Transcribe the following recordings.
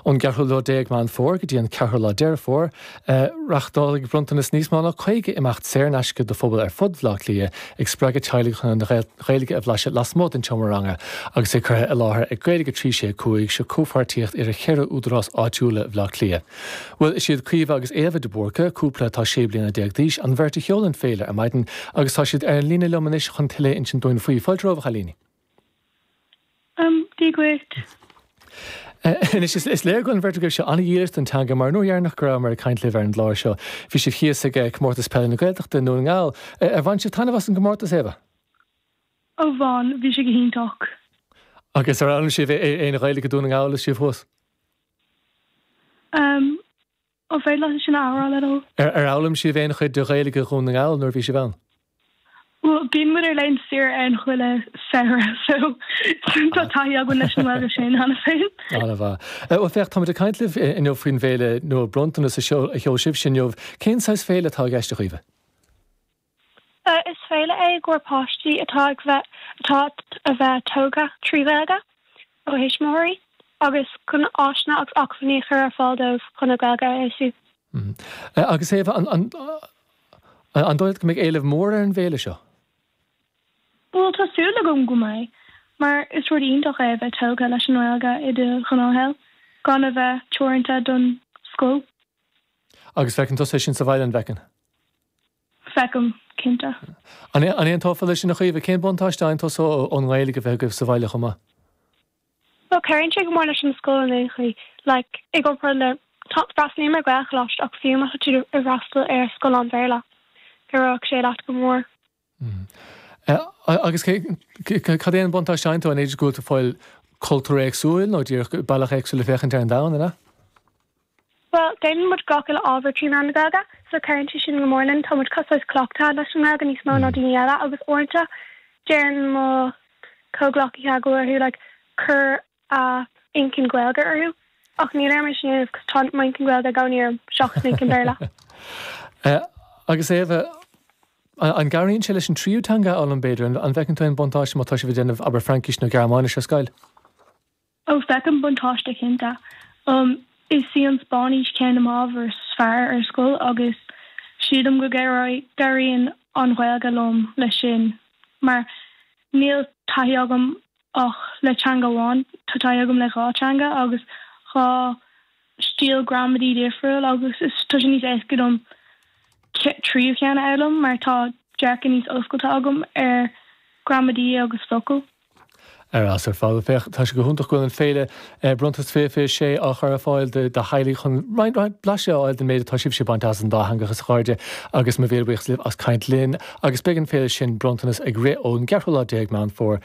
Ón gceathrú lá déag Meán Fómhair go dtí an ceathrú lá Deireadh Fómhair, reáchtálfaidh Bronntanas níos mó ná 50 imeacht saor in aisce do phobail ar fud Bhaile Átha Cliath, ag spreagadh teaghlaigh chun an Ghaeilge a bhlaiseadh lasmuigh den tseomra ranga, agus é curtha i láthair ag Gaeilge 365, seo comhpháirtíocht idir cheithre údarás áitiúla Bhaile Átha Cliath. Bhuel, is iad Caoimhe agus Éabha de Búrca, cúpla atá sé bliana déag d'aois, an bheirt a sheol an fhéile ar maidin, agus tá siad ar an líne liom anois chun tuilleadh a insint dúinn faoi. Fáilte romhaibh, a chailíní! Um, Dia dhuit. Anois, is léir go bhfuil an bheirt agaibhse an-dhílis don teanga mar an uair dheireanach go rabhamar ag caint libh ar an gclár seo bhí sibh thíos ag Comórtas Peile na Gaeltachta i nDún na nGall. Ar bhain sibh taitneamh as an gcomórtas, Éabha? Ó bhain, bhí sé go hiontach. Agus ar fhoghlaim sibh aon Ghaeilge i nDún na nGall is sibh thuas? Um. An féidir leat ansin a athrá, le do thoil? Ar fhoghlaim sibh aon chuid de Ghaeilge Dhún na nGall nuair a bhí sibh ann? Bhuel, bíonn muid ar laethanta saoire ann chuile samhradh, so tá taithí againn leis an nGaeilge sin cheana féin. An-mhaith. Bhuel, féach, táimid ag caint libh inniu faoin bhféile nua Bronntanas a sheol sibhse inniu. Cén saghas féile atá i gceist, a Chaoimhe? Is féile é i gcomhair páistí atá ag bheith atá a bheith tógtha trí Ghaeilge óna dtuismitheoirí agus chun áiseanna agus acmhainní a chur ar fáil dóibh chun a nGaeilge a fheabhsú. Agus Éabha, an an dóigh leat go mbeidh éileamh mór ar an bhféile seo? Bhuel, tá súil agam go mbeidh, mar is rud iontach é a bheith tógtha leis an nGaeilge i do ghnáthshaol, gan a bheith teoranta don scoil. Agus feiceann tusa é sin sa bhaile, an bhfeiceann? Feicim, cinnte. An aontófá leis sin, a Chaoimhe? Cén buntáiste a fhaigheann tusa ón nGaeilge a bheith agaibh sa bhaile chomh maith? Bhuel, cuireann sé go mór leis an scoil in aon chaoi. Like, i gcomparáid le, freastalaím ar Gaelcholáiste ach fiú má tá tú ag freastal ar scoil lán-Bhéarla, oibreoidh sé leat go mór. Agus cad é an buntáiste a fhaigheann tú an fhad go bhfuil tú ag fáil cultúr éagsúil nó díreach bealach éagsúil le féachaint ar an domhan, an ea? Bhuel, déanann muid gach uile ábhar trí mheán na Gaeilge, so cuireann sé sin go mór linn. Tá muid cosúil, is cleachtaithe leis an nGaeilge níos mó ná daoine eile agus uaireanta deireann mo chomhghleacaithe go mbíonn orthu, like, cur a n-inchinn Gaeilge orthu, ach níl orm é sin a dhéanamh cos tá m'inchinn Gaeilge i gcónaí orm seachas m'inchinn Béarla. Agus Éabha, An gcabhraíonn sé leis an tríú teanga a fhoghlaim, b'fhéidir? An bhfeiceann tú aon bhuntáiste má tá sibh ag déanamh, abair, Fraincis nó Gearmáinis ar scoil? Ó, feicim buntáiste, cinnte. Is í an Spáinnis ceann de m'ábhair is fearr ar scoil agus sílim go gcabhraíonn an Ghaeilge liom leis sin mar níl taithí agam ach le teanga amháin, tá taithí agam le dhá theanga agus dhá stíl gramadaí difriúil agus tá sé níos éasca dom tríú cheann a fhoghlaim mar tá dearcadh níos oscailte agam ar ghramadaí agus focail. Ar fheabhas ar fad, féach, tá sé go hiontach go bhfuil an féile Bronntanas 2026 á chur ar fáil do theaghlaigh chun roinnt blaiseadh a fháil den méid atá sibhse a bhaint as an dátheangachas, a chairde, agus mo mhíle buíochas libh as caint linn agus beidh an féile sin, Bronntanas, ag rith ón gceathrú lá déag Meán Fómhair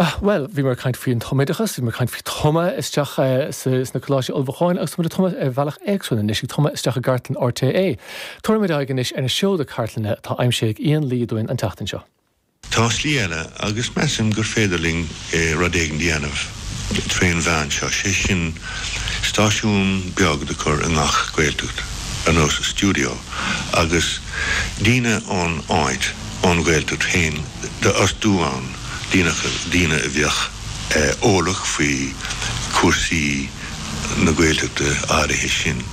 Bhuel, bhí mé ag caint faoi an tumoideachas, bhí mé ag caint faoi tumadh isteach sna coláistí ullmhúcháin agus tá muid ag tumadh ar bhealach éagsúil anois, ag tumadh isteach i gcartlann RTÉ. Tabharfaidh muid aghaidh anois ar na seoda cartlainne atá aimsithe ag Ian Lee dúinn an tseachtain seo. Tá slí eile agus measaim gur féidir linn rud éigin a dhéanamh trén mheán seo, sé sin stáisiún beag do cur i ngach Gaeltacht ar nós stiúideo agus daoine ón áit, ón Ghaeltacht féin d'fhostú ann. daoine a bheadh eolach faoi chúrsaí na Gaeltachta áirithe sin.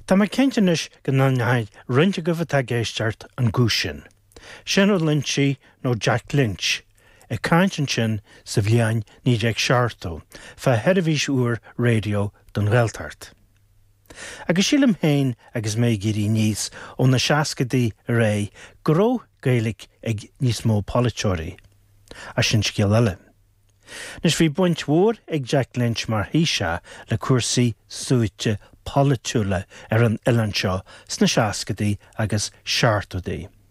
Tá mé cinnte anois go n-aithneoidh roinnt agaibh atá ag éisteacht an guth sin. Seán Ó Loingsigh nó Jack Lynch ag caint ansin sa bhliain 1970 fá sheirbhís úr raidió don Ghaeltacht. Agus sílim féin, agus mé ag éirí aníos ó na seascaidí ar aghaidh, go raibh Gaeilic ag níos mó polaiteoirí. Ach sin scéal eile. Anois, bhí baint mhór ag Jack Lynch mar Thaoiseach le cúrsaí suaite polaitiúla ar an oileán seo sna seascaidí agus seachtóidí.